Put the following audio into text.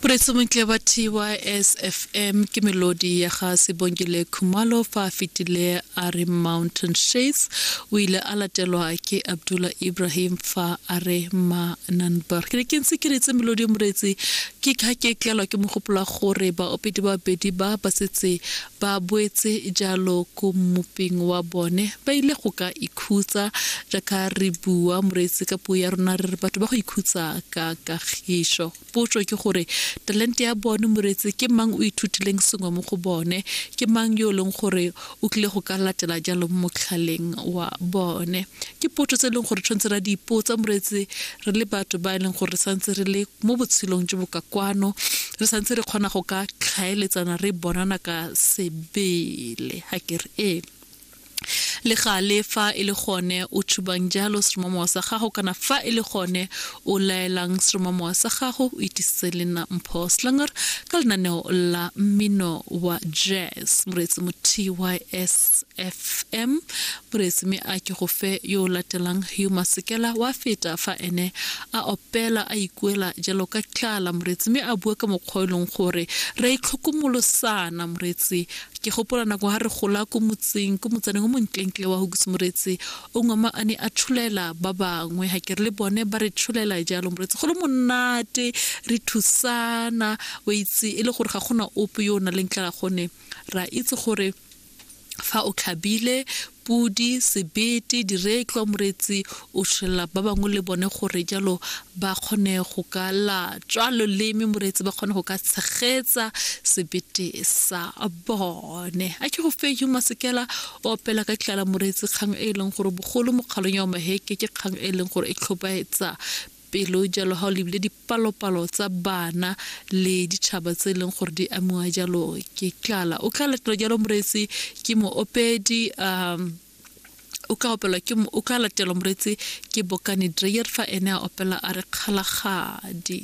Presomontle wa TYSFM ke melodi ya ga Sebongile Khumalo fa a fetile a re Mountain Shades o ile a latelwa ke Abdullah Ibrahim fa a re Mananbar ke ne ke ntse ke retse melodi moretsi ke kha ke tlelwa ke mogopolo gore baopedi ba bedi ba ba setse Ba boetse jalo ko mmuping wa bone ba ile go ka ikhutsa jaaka re bua moreetsi ka puo ya rona re re batho ba go ikhutsa ka kagišo potso ke gore talente ya bone moreetsi ke mang o ithutileng sengwe mo go bone ke mang yo e leng gore o tlile go ka latela jalo mo motlhaleng wa bone ke potso tse e leng gore tshwanetse ra di ipotsa moreetsi re le batho ba e leng gore re santse re le mo botshelong jo bo ka kwano re santse re kgona go ka tlhaeletsana re bonana ka sebele ga ke re ee le gale fa e le gone o tshubang jalo seromamowa sa gago kana fa e le gone o laelang seromamowa sa gago o itisitse le nna mpho slanger ka lenaneo la mmino wa jazz moreetsi mo tysfm Pres. Mme a ke go fe yo o latelang yo masekela wa feta fa ene a opela a ikuela jalo ka tlala, moretsi, mme a bua ka mokgwa o e leng gore re a itlhokomolosana, moretsi. Ke gopola nako ha re gola ko motseng, ko motsaneng o montlentle wa Hugusi, moretsi, o ngwama a ne a tsholela ba bangwe, ga ke re le bone ba re tsholela jalo, moretsi, go le monate, re thusana, o itse, e le gore ga gona ope yo o na leng tlala gone ra itse gore Fa o tlhabile podi, sebete, diretlwa, moretsi, o tshwelela ba bangwe le bone gore jalo ba kgone go ka latswa loleme, moretsi ba kgone go ka tshegetsa sebete sa bone. A ke go fe yo masekela o opela ka tlala moretsi kgang e e leng gore bogolo mo kgalong ya omaheke ke kgang e e leng gore e tlhobaetsa Pelo jalo ga o lebile dipalopalo tsa bana le ditšhaba tse e leng gore di amiwa jalo ke tlala. O tla latela jalo moreetsi ke moopedi um o ka opelwa ke o ka latelwa moreetsi ke bokane dreyer fa ene a opela a re kgalagadi